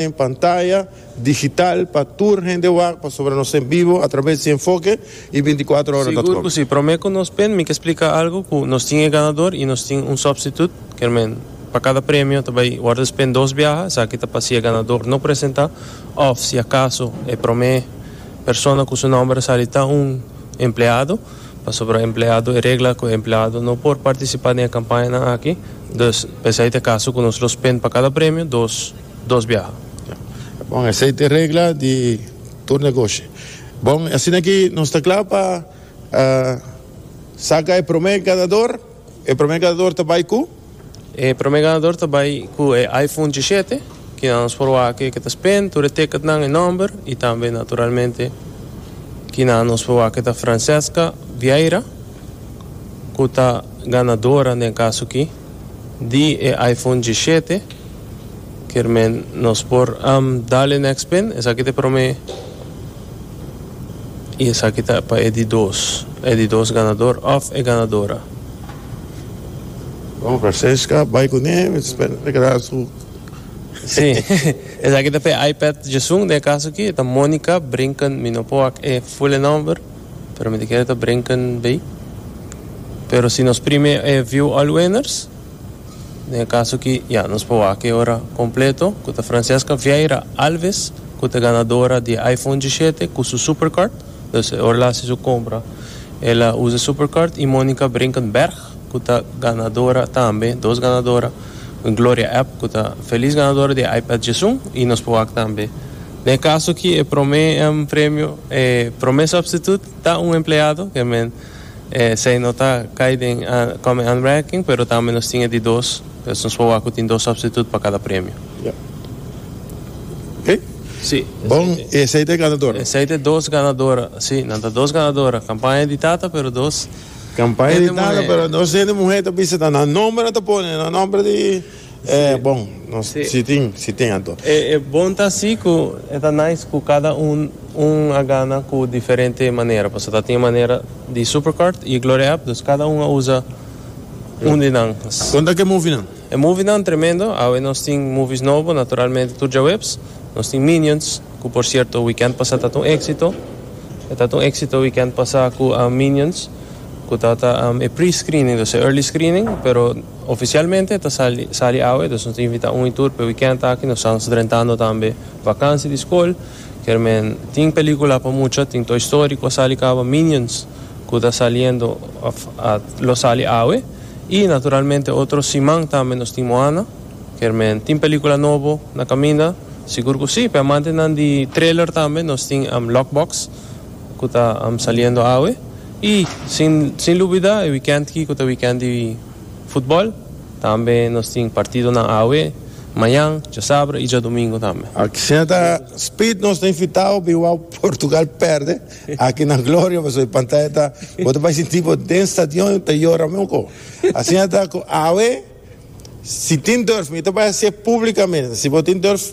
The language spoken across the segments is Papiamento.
den pantaya digital pa tur hende wak pasobra nos ta en bibo atrabes di Enfoke y binticuatro ora dot com. Sigur cu si. Prome cu nos pen mi ke splica algo cu nos tin e ganador y nos tin un substitut, kermen pa cada premio ta bay wordo spend dos biaha, esaki ta pa si e ganador no presenta of si acaso e prome persona cu su nomber a sali ta un empleado, pasobra empleado e regla cu e empleado no por participa den e campañanan aki, dus pa esaki ta e caso cu nos lo spend pa cada premio dos. Dos biaha. Bon, esei ta e regla di tur negoshi. Bon, asina ki nos ta kla pa saka e promé ganador. E promé ganador ta bai ku? E promé ganador ta bai ku e iPhone dishete, ki nan por wak aki ke ta spren, tur e teketnan, e nòmber i tambe naturalmente ki nan nos por wak aki ta Francesca Vieira, ku ta ganadora den e kaso aki di e iPhone dishete. Kermen nos por am dale next pin esaki te prome y esaki ta pa e di dos e di dos ganador of e ganadora. Bon Francesca bay cune mi ta spera ta keda su. Si esaki ta pa e iPad djesun den e caso aki ta Monica Brinken mi no por wak e fule nomber pero mi ta kere ta Brinken bay pero si nos prime e view all winners. Den e kaso aki, ya, nos por wak e ora kompleto, ku ta Francesca Vieira Alves, ku ta ganadora di e iPhone dishete ku su supercard. Dus e ora el a hasi su kompra, el a usa e supercard. I Monica Brinkenberg, ku ta ganadora tambe, dos ganadora, i Gloria Epp, ku ta felis ganadora di e iPad djesun, i nos por wak tambe. Den e kaso aki, e promé premio, e promé sòpstituut, ta un empleado, ke men. Esei no ta kai den Come and Ranking, pero tambe nos tin e di dos, pues nos por wak ku tin dos substitute pa kada premio. Ya. Oke? Si. Bon, esei ta e ganadora? Esei ta e dos ganadora, si. Nan ta dos ganadora. Kampaña di tata, pero dos. Kampaña di tata, pero dos hende muhé ta bisa ta nan nomber nan ta pone, no nomber di. E bon nos si tin si tin ado. E bon ta si cu e ta nice cu cada un un a gana cu diferente manera pasobra ta tin e manera di Supercard y e Gloria App dus cada un a usa un di nan. Con ta cu e movie nan? E movie nan tremendo awe nos tin movies nobo naturalmente tur djaweps nos tin Minions cu por cierto weekend pasa ta ta un exito e ta ta un exito weekend pasa cu Minions cu ta ta e pre screening dus e early screening pero. Oficialmente ta sali awe, entonces nos ta invita un y tur p'e weekend aki, nos tan drentando tambe vakansi di skol. Kermen tin pelikula pa mucha, tin Toy Story ku a sali kaba, Minions ku ta saliendo òf a lo sali awe y naturalmente otro siman tambe nos tin Moana. Kermen tin pelikula nobo na kaminda? Sigur ku si, p'e amantenan di trailer tambe nos tin Lockbox. cu ta saliendo awe. Y sin lubida e weekend ki cu ta weekend di futbol. Tambe nos tin partidonan awe, mañan, djasabra y djadomingo tambe. Aki siña ta Speed, nos ta invitao bin wou Portugal perde aki na Gloria pasobra e pantaya ta bo ta bai sinti bo den stadion y ta yora mi oko. Asiña ta cu awe si tin durf mi ta bai haci'e publicamente si bo tin durf.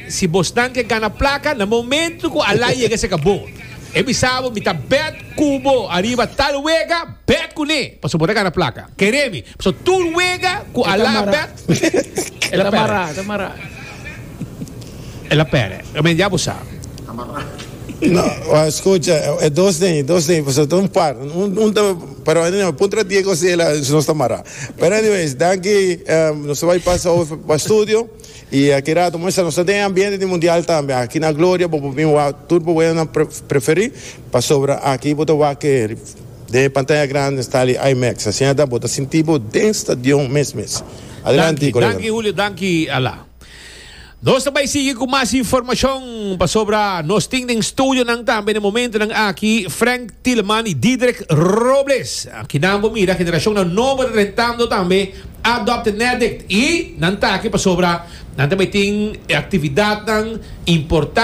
Si bosnan ke gana plaka, na momento ku Alai yega seka bo, e bisa bo, Mi ta bèt ku bo ariba tal wega, bèt kuné, pasobra bo ta gana plaka. Keremi, pasobra tur wega ku Alai a bèt, el a pèrè. El a pèrè. Amen, ya bo sa. No, wak, skucha, e dos den ei, dos den ei, pasobra ta un par. Un ta, pero anyway, mi puntra di e kos ei la, nos ta mará. Pero anyways, danki, nos ta bai pasa awe pa studio. I aki rato muestra nos ta den e ambiente di mundial tambe. Aki na Gloria bo por bin wak tur bo weganan preferí, pasobra aki bo ta wak ke den e pantaya grandi Stali IMAX. Asina ta bo ta sinti bo den stadion mes mes. Adelanti, kolega. Danki, Julio. Danki, Ala. Nos ta bai sigui ku mas informashon, pasobra nos tin den studionan tambe na e momentunan aki Frank Tieleman i Diederik Robles. Kinan bo mira, generashonnan nobo ta drentando tambe. Adopt Nedict y nan ta aki pasobra nan tambe tin e actividadnan importante.